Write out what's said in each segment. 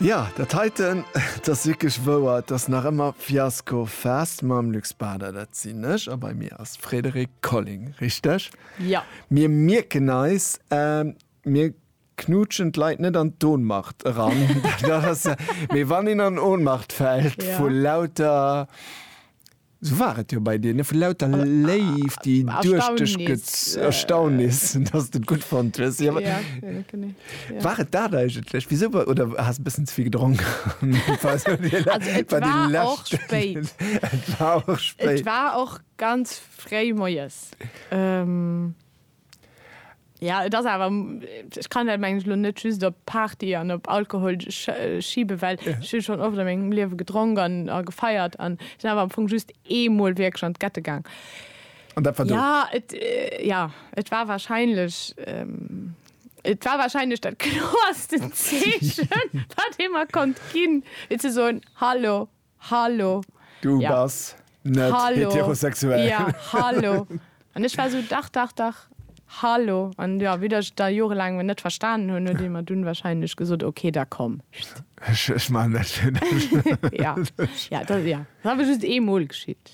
Jo, dat heiten, et ass wierklech wouer, et ass nach ëmmer Fiasco Fest mam Luc Spada, dat sinn ech, a bei mir ass Frédérique Colling, richteg? Jo. Mir mierken eis, mir knuutschen d'Leit net an d'Ohnmacht eran, dat ass, mee wann een an Ohnmacht fält vu lauter. Sou war et jo bei dir, ne? Vu lauter Léift, déi duerch dech gez. Erstaunnis. Erstaunnis, dass de et gutt fonnt hues. Jo, Ja, jo, genee. Ja. war et dat eigentlech? Wisou wa-, oder has e bëssen ze vill gedronk? Also, et war och spéit. Et war och spéit. Et war och ganz fréi moies. Ja, et ass awer, ech kann dat, mengen ech, elo net just op Party an op Alkohol schiben, well ech hu schonn oft a mengem Liewe gedronk an a gefeiert an sinn awer am Fong just eemol wierklech an d'Gette gaang. An dat war do? Ja, et, ja, et war wahrscheinlech, et war wahrscheinlech dat kloersten Zeechen, wat ee mer konnt ginn, fir ze soen, Hallo, Hallo. Du ja. bass net Hallo. heterosexuell. Ja, hallo. An ech war so, dach, dach, dach. Hallo. An ja, wéi ech da jorelaang net verstanen hunn, huet ee mer dunn warscheinlech gesot, okay, da komm. Ech, ech maachen dat fir dech. Ja, ja, dat, ja. Dat awer just eemol geschitt.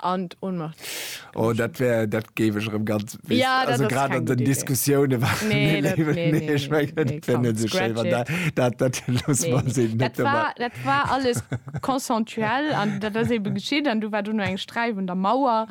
An d'Ohnmacht. Oh, dat wär, dat géif ech erëm ganz, weess, ja, also grad an den Diskussiounen war nee, dat, nee, nee, nee, ich mein, nee, nee, komm, so schéin, dat, dat, dat, los nee, nee. Dat, war, dat war alles konsentuell an dat ass eben geschitt an du war du no eng Streif un der Mauer.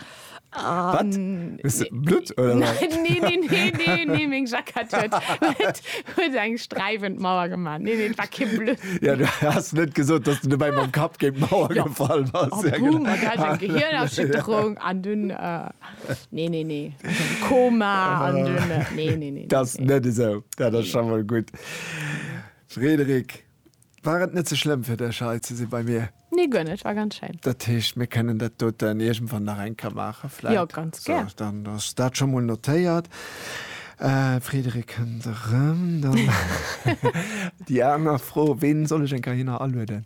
Um, Blut oder? Nein, nee, nee, nee, nee, nee, meng Jackett huet, huet, Huet eng streifend Mauer gemacht. Nee, nee, war kein Blöd. Ja, du hast net gesot, dass du dabei beim Kapp gegen Mauer ja. gefallen was. Oh, ja, boom, genau. Gell, eng Gehirnerschütterung an dünn. Äh, nee, nee, nee. Koma an ah. dünn. Äh, nee, nee, nee. Das nee. net so. Ja, das nee. schon mal gut. Frederik. War et net ze schlëmm fir dech hei ze si bei mir? Nee, guer net, war ganz schéin. Dat heescht, mir kënnen dat doten iergendwann nach eng Kéier maachen vläit? Jo, ganz gär. Sou, dann ass dat scho mol notéiert. D'Friederik kënnt erëm. Dann déi aner Fro, Ween soll ech eng Kéier hinner alueden?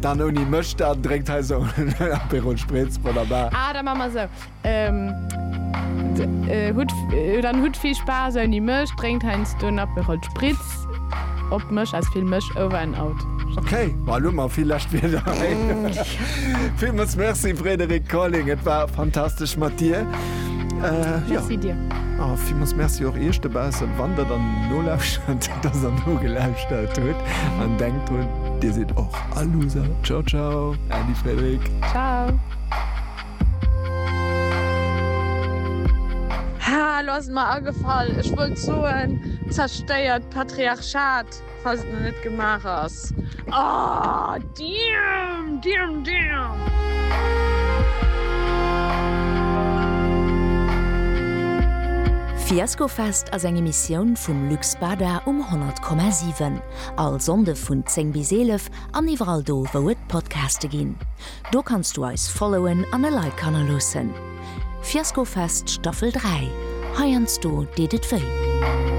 Dann ouni mech, dann drénkt hei esou en Aperol Spritz, wonnerbar. Ah, da maa mer esou. Ähm, hutt, dann hutt vill Spaass ouni mech, drénkt heiansdo en Aperol Spritz op mech, as vill mech, over and out. Ok, ma elo mar vill lescht Wierder hei. Villmools Merci Frédéric Colling, et war fantastesch mat dir. Merci dir. A villmools Merci och iech dobaussen, wann der dann nolauschert oder der nogelauschtert hutt an denkt drun, Dir sidd och all Loser. Ciao ciao, Äddi Frédrik. Ciao. Haa, lo ass et mer agefall, ech wollt soen, Zerstéiert d'Patriarchat, falls et nach net gemaach ass. Aah, damn, damn, damn! Fiascofest ass eng Emissioun vum Lux Bada um 100,7. All Sonnde vun 10 bis 11 an iwwerall do wou et Podcaste ginn. Do kanns du eis followen an e Like hannerloossen. Fiaskofest Staffel 3, heiansdo deet et wéi.